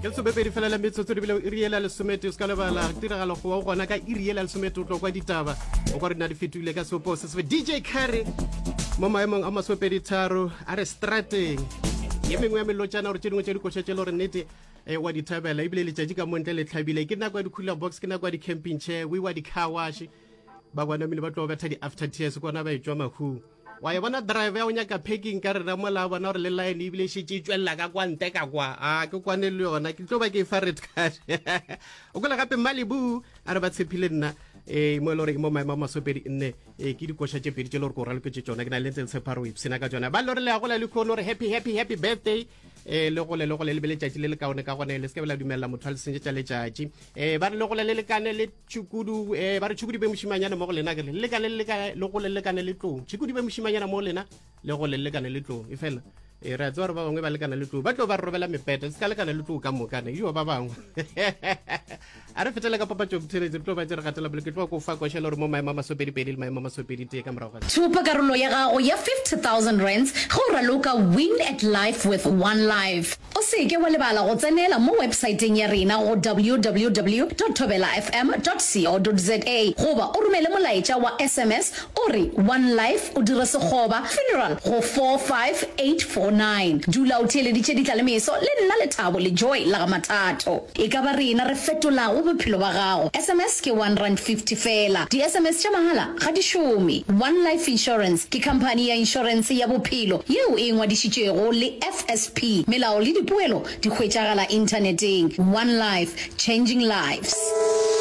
ke lesomepedi fela la metsotso di bile iri ela lesomete o se ka lebala tiragalo go wa gona ka iri ela lesomete o tlo kwa ditaba o kwa re na di fetogile ka seopo se sebe dj carry mo maemong a masomepedi tharo a re strateng ye mengwe ya melotšana gore tše dingwe tše dikoša tše le gore nnete um wa dithabela ebile letšatši ka montle le tlhabile ke nako ya di-cooler box ke nako ya di-camping chair we wa di-car wash ba kwanamile ba tlo betha di-after tears kona ba e tswa mahung wa e bona drive ya o nyaka packing ka rena mola a bona gore le line ebile e šetse e tswelela ka kwa nte ka kwa a ke kwane le yona ke tlo ba ke e fa red card o kwela gape malibu a re ba tshephile nna um mo e le gore ke mo maemo a masopedi nne um ke dikoša tše pedi tše le gore ko raloketse tsona ke na le ntse le tshepha gore o ipshena ka tsona ba le gore le ya gola le kgone gore happy happy happy birthday um le gole le gole le be letšatši le le kaone ka gone le se ke be la dumelela motho a le sentše tša letšatši um ba re le gole le lekane le tšhukudu um eh, ba re tšhukudu be mošimanyana mo go lena kere le ka le leka le go lelekane le tlong tšhukudu be mošimanyana mo go lena le go lelekane le tlong e fela e re a tsewa gore ba bangwe ba lekana le tlong ba tlo ba re robela mepete se ka lekana le tlong ka mokane eo ba bangwe a re fetele ka papatso botheletse re tlo ba tse re gatela pele ke tlo ko fa košela gore mo maemo a masopedipedi le maemo a masopedi tee ka morago thopa karolo ya gago ya 50000 rands go raloka win at life with one life O se ke wa lebala go tsenela mo wepsaeteng ya rena go www.thobelafm.co.za goba o romele molaetša wa sms o re One Life o dire sekgoba, funeral, go 45849. Dula o theeleditše Ditla le Meso le nna Lethabo le Joy la ga Mathato. E ka ba rena re fetolago bophelo ba gago. Sms ke one rand fifty fela. Di-sms tša mahala ga di šome. One Life Insurance ke khamphani ya inšorense ya bophelo yeo e ngwadišitšwego le. Tsp Melao le dipoelo di hwetšagala inthaneteng One Life, Changing Lives.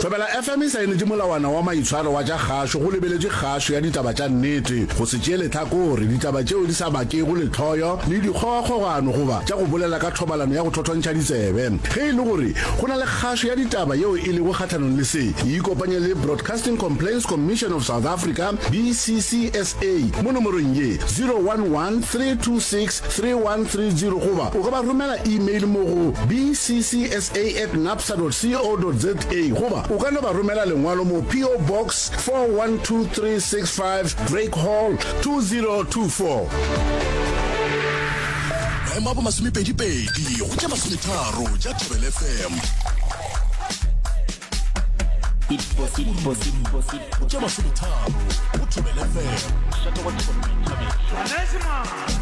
Thobela FM e saenetše molawana wa maitshwaro wa tša kgašo go lebeletše kgašo ya ditaba tša nnete, go se tšee lehlakore, ditaba tšeo di sa bakego lehloyo le dikgogakgogano goba tša go bolela ka thobalano ya go thothontšha ditsebe. Ge e le gore go na le kgašo ya ditaba yeo e lego kgahlanong le se, ikopanye le Broadcasting Complaints Commission of South Africa, BCCSA, mo nomorong ye, 011 326 3130 goba o ka ba romela email mo go bccsa at napsa dot co dot za goba o ka no ba romela lengwalo mo PO Box 412365 Drake Hall 2024. Maemo a bo masomepedipedi go tša masometharo tša Thobel FM. Tša masometharo go Thobel FM.